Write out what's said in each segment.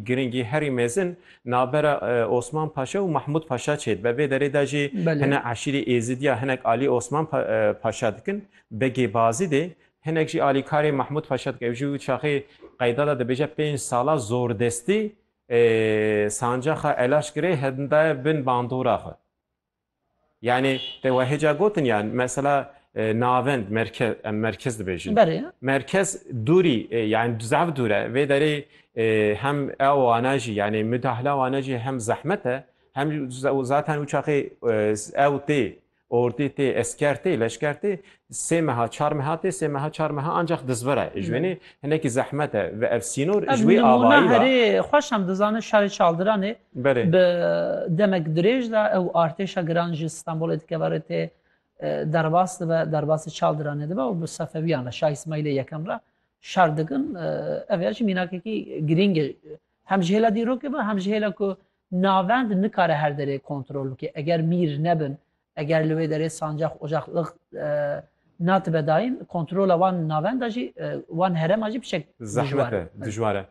Giringî herî mezin navbera Osman Paşa û Mahmûd Paşa çêdibe. Vê derê de jî hine eşîrê Êzidî ya hinek alî Osman Paşa dikin. Begê Bazîdê hinek jî alîkarê Mahmûd Paşa dikin. Ew jî wî çaxê qeyda de dibêje pênc sala zordestî sancaxa Elaş girê hindaye bin bandora xwe. Yanî te wehê ca gotin ya mesela navend merkez em merkez dibêjin. Berê. Merkez dûrî yani zaf dûr e. Vê derê hem ew wana jî yani müdahale wana jî hem zehmet e hem zaten û çaxê ew tê ordî tê esker tê leşker tê Sê meha çar meha tê sê meha çar meha ancax dizvira e. Ji wenê hinekî zehmet e ve ev sînor ji wê avayî ve. Ev nimûna herê xweş em dizanin şarê Çaldiranê bi demek dirêj de ew artêşa giran ji Stenbolê dikeve rê tê derbas dibe derbasê Çaldiranê dibe û bi Sefewiyan re Şah Îsmaîlê Yekem re şer dikin. Ev ya jî mînakekî girîng e hem ji hêla dîrokê ve hem ji hêla ku navend nikare her derê kontrol bike. Eger mîr nebin Eger li wê derê sancax, ocax, lix natibe dayîn, kontrola wan navenda jî, wan herema jî bi şek dijwar e. Dijwar e.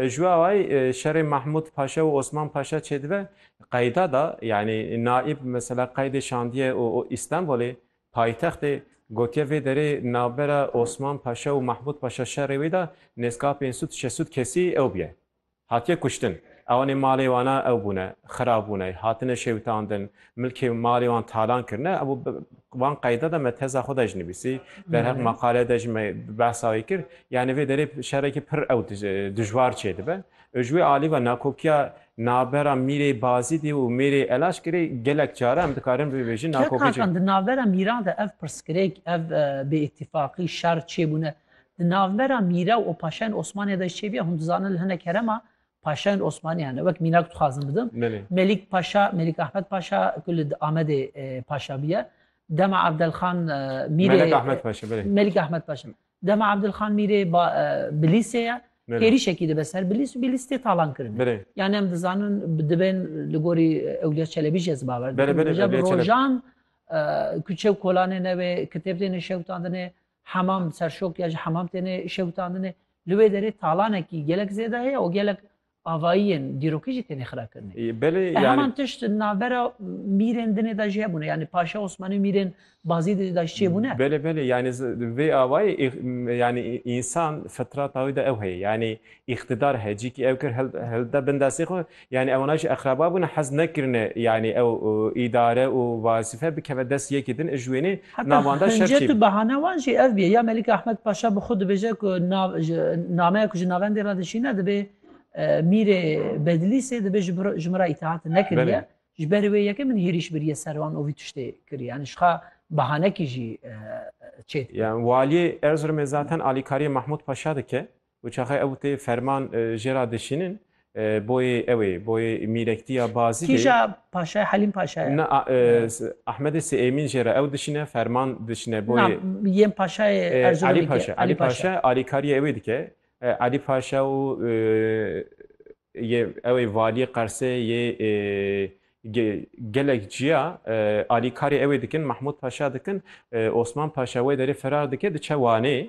Ji we awayî şerê Mahmûd Paşa û Osman Paşa çêdibe qeyda da, yanî naîb mesela qeydê şandiye û Îstenbolê, paytextê, gotiye vê derê navbera Osman Paşa û Mahmûd Paşa şerê wê da nêzkapên sûd, şesûd kesî ew bûye. Hatiye kuştin. Ewanê malê wana ew bûne, xira bûne, hatine şewitandin, milkê û malê wan talan kirine, ew wan qeyda de me teza xwe de jî nivîsî, derheq maqale de jî me behsa wê kir. Yanî vê derê şerekî pir ew dijwar çêdibe. Ew ji wê alî ve nakokiya navbera mîrê Bazîdê û mêrê Elaşkirê gelek care em dikarin bibêjin nakoki ji. Kak Hakan di navbera mîran de ev pirsgirêk, ev bêîtîfaqî, şer çêbûne. Di navbera mîra û paşayên Osmaniyê de jî çêbîya hûn dizanin li hinek herema paşayên Osmaniyan e. Wek mînak dixwazim bidim. Melîk Paşa, Melîk Ahmed Paşa ku li Amedê paşa bûye. Dema Evdelxan Mîrê Melîk Ahmed Paşa belê. Melîk Ahmed Paşa. Dema Evdelxan Mîrê Bilîsê ye. Hêrîşekî dibe ser Bilîs û Bilîs tê talan kirin. Yani em dizanin dibên li gorî Ewliya Çelebî jî ez bawer dikim. Rojan ku çew kolanê newê kitêb têne şewitandinê. Hemam serşok ya ji hemam têne şewitandine. Li wê derê talanekî gelek zêde heye û gelek avayiyên dîrokî jî têne xirakirinê. Belê yani. Heman tişt navbera mîrên dinê de jî hebûne. Yani Paşa Osmanî û mîrên Bazî de jî da ji çê bûne. Belê belê yani vê avayî yani însan fitrata wî de ew heye. Yani îqtidar heye. Cîkî ew kir hilda bin destê xwe Yanî ewana jî exraba bûne hez nekirine yanî ew îdare û wazife bikeve dest yekî din ji wênê Heta navanda şer hincet û çêbû. behana wan jî ev bûye ya Melîk Ehmed Paşa bi xwe dibêje ku nav ji nameya ku ji navendê re dişîne dibê Mîrê Bedlîsê dibê ji ji min re îteat nekiriye. Belê. Ji ber wê yekê min hêrîş biriye ser wan û vî tiştê kiriye. Yanî ji xwe behanekî jî çêdike. Yan waliyê Erzurumê zaten alîkariyê Mahmûd Paşa dike. Û çaxê ew tê ferman jê ra dişînin boyê ew ê, boyê mîrektiya Bazîdê. Kîja paşa ye? Helîm paşa ye? Na, Ehmedê Siêmîn jê ra ew dişîne, ferman dişîne boyê. Na, yên paşayê Erzurumî kî ye? Elî Paşa. Alîkariyê ew ê dike. Elî Paşa û yê ew ê valiyê Qersê yê gelek ciya alîkarê ew ê dikin, Mehmûd Paşa dikin. Osman Paşa wê derê ferar dike diçe Wanê.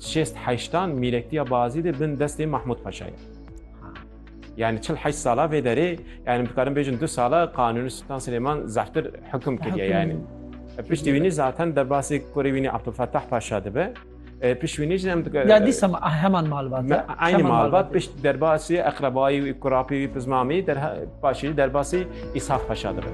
Şêst heştan mîrektiya Bazî de bin destê Mahmud Paşa ye. Yani çil heşt sala vê derê yani bikarin bêjin du sala Kanuni Sultan Süleyman zehtir hüküm kiriye yani. Piştî wînî zaten derbasê kurê wînî Abdulfettah Paşa dibe. E, pişt wînî jî em dike. Ya dîsa ah, heman malbat. Me aynı malbat pişt derbasê eqrebayî wî kurapî wî pizmamî derha paşî derbasê İshak Paşa dibe.